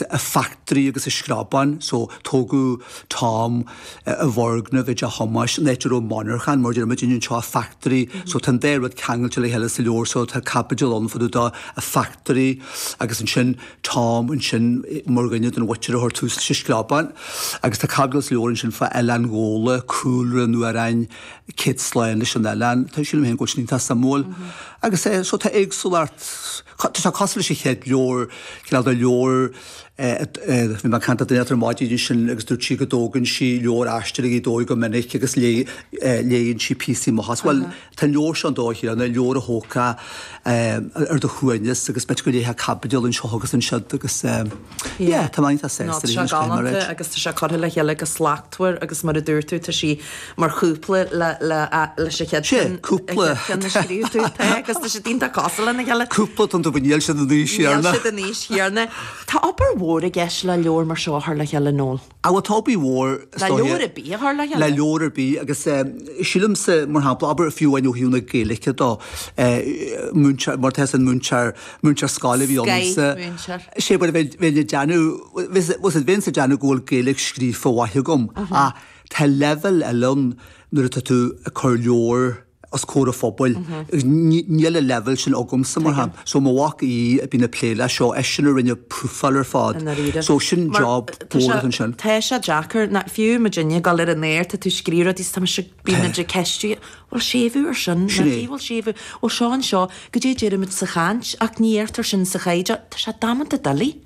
an factory agus an Screabán, so tógadh Tom i bhfoirgneamh i dTeach Thomáis, an áit a raibh monarcha ann, mar a deir muidinne anseo, an factory, so tá an dá rud ceangailte le chéile sa leabhar, so tá caibidil ann fá dtaobh den factory agus ansin Tom ansin mar dhuine den mhuintir a chuir tús leis an Screabán agus tá caibidil sa leabhar ansin faoi Oileán Ghabhla, cúlra an amhráin Céad Slán leis an Oileán, tá, sílim féin go bhfuil sin iontach suimiúil agus é, so tá éagsúlacht. Tá sé cosúil leis an chéad leabhar, cineál de leabhar, bhí mé ag caint le duine inteacht ar maidin ansin agus dúirt sí go dtógann sí leabhar Aisteoirí Ghaoth Dobhair go minic agus léann sí píosaí amach as. Bhuel, tá an leabhar seo an dóigh chéanna, leabhar a thógfá ar do shuaimhneas agus beidh tú ag léamh caibidil anseo agus ansiúd agus. Yeah, tá mé as East United. Tá sé galánta agus tá sé curtha le chéile go slachtmhar agus mar a dúirt tú tá sí mar chúpla leis an chéad cheann. Sé, cúpla. Ceann a scríobh tú te agus tá siad iontach cosúil lena chéile. Cúpla don dubha níl siad an aois chéanna. Níl siad an aois chéanna. Tá obair mhór i gceist le leabhar mar seo a chur le chéile, Noel. Ah, tá obair mhór is dóigh. Le leabhar ar bith a chur le chéile. Le leabhar ar bith agus sílimse mar shampla, abair fiú amháin ó thaobh na Gaeilge dó, múinteoir, mar tá a fhios agat múinteoir, múinteoir scoile a bhí ionamsa. Scoil múinteoir. Sé mar a bheith, bheinn ag déanamh, was it, bheinnse ag déanamh go bhfuil Gaeilge scríofa mhaith agam ach tá leibhéal eile ann nuair atá tú ag cur leabhar, os comhair an phobail agus níl an leibhéal sin agamsa mar shampla. So mo mhac Aodh a bíonn ag plé leis seo, eisean a rinne an phrofáil ar fad. I ndáiríre. So sin Mar job tá sé, buartha ansin. tá sé deacair na, fiú muidinne go léir nuair atá tú ag scríobh rudaí 's tá mise, bíonn muid ag ceistiú an bhfuil séimhiú ar sin, Sin nach é. bhfuil séimhiú, bhuel seo anseo, goidé a deirimid sa chaint ach ní fheictear sin sa chaighdeán, tá sé damanta doiligh.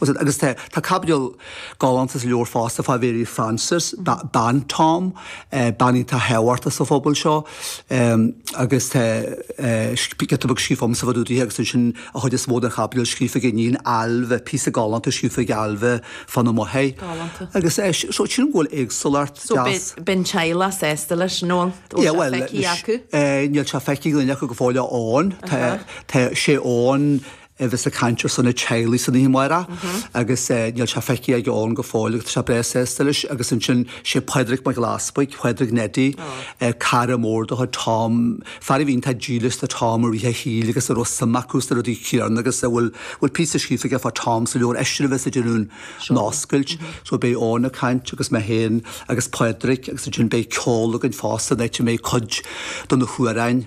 Agus tá caibidil galánta sa leabhar fosta fá Mhary Frances, bean Tom, bean iontach thábhachtach sa phobal seo agus tá giota beag scríofa agamsa fá dtaobh dithe agus ansin an chuid is mó den chaibidil scríofa ag a hiníon Ailbhe, píosa galánta scríofa ag Ailbhe fána máthair. Galánta. Agus é seo, sin an bhfuil éagsúlacht deas. So beidh an teaghlach sásta leis, nó an bhfuil sé feicthe acu? Níl sé feicthe ag aon duine acu go fóill, Eoin, tá sé, Eoin, a bheas ag caint ar son an teaghlaigh san oíche amárach agus níl sé feicthe ag Eoin go fóill agus tá sé breá sásta leis. Agus ansin sé Pádraig Mac Gairbheith, Pádraig Neidí, cara mór do Tom, fear a bhí iontach dílis do Tom i rith a shaoil agus a raibh suim acu sna rudaí céanna agus a bhfuil píosa scríofa aige fá Tom sa leabhar eisean a bheas ag déanamh an oscailt. So beidh Eoin ag caint agus mé féin agus Pádraig agus ansin beidh ceol againn fosta, áit a mbeidh cuid de na hamhráin,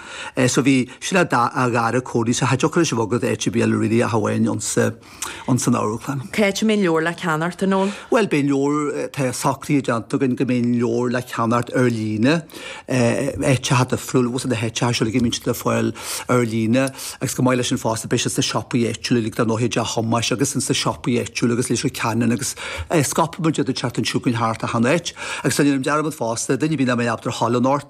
So bhí sin a dath a ghaire cónaí sa hait ocrais a bhog go dtí HBL really ach amháin ins an Amharclann. Cá háit a mbeidh an leabhar le ceannacht a Noel? Bhuel beidh an leabhar tá socruithe déanta againn go mbeidh an leabhar le ceannacht ar líne áiteacha difriúla agus na háiteacha seo ag minste le fáil ar líne agus chomh maith leis sin fosta beidh siad sna siopaí áitiúla lig don nóiméad a Thomáis agus ins na siopaí áitiúla agus le ceannach agus scaipfidh muid iad an tseachtain seo chugainn thart achan áit agus ná déan dearmad fosta duine ar bith nach mbeidh ábalta a ghabháil ann anocht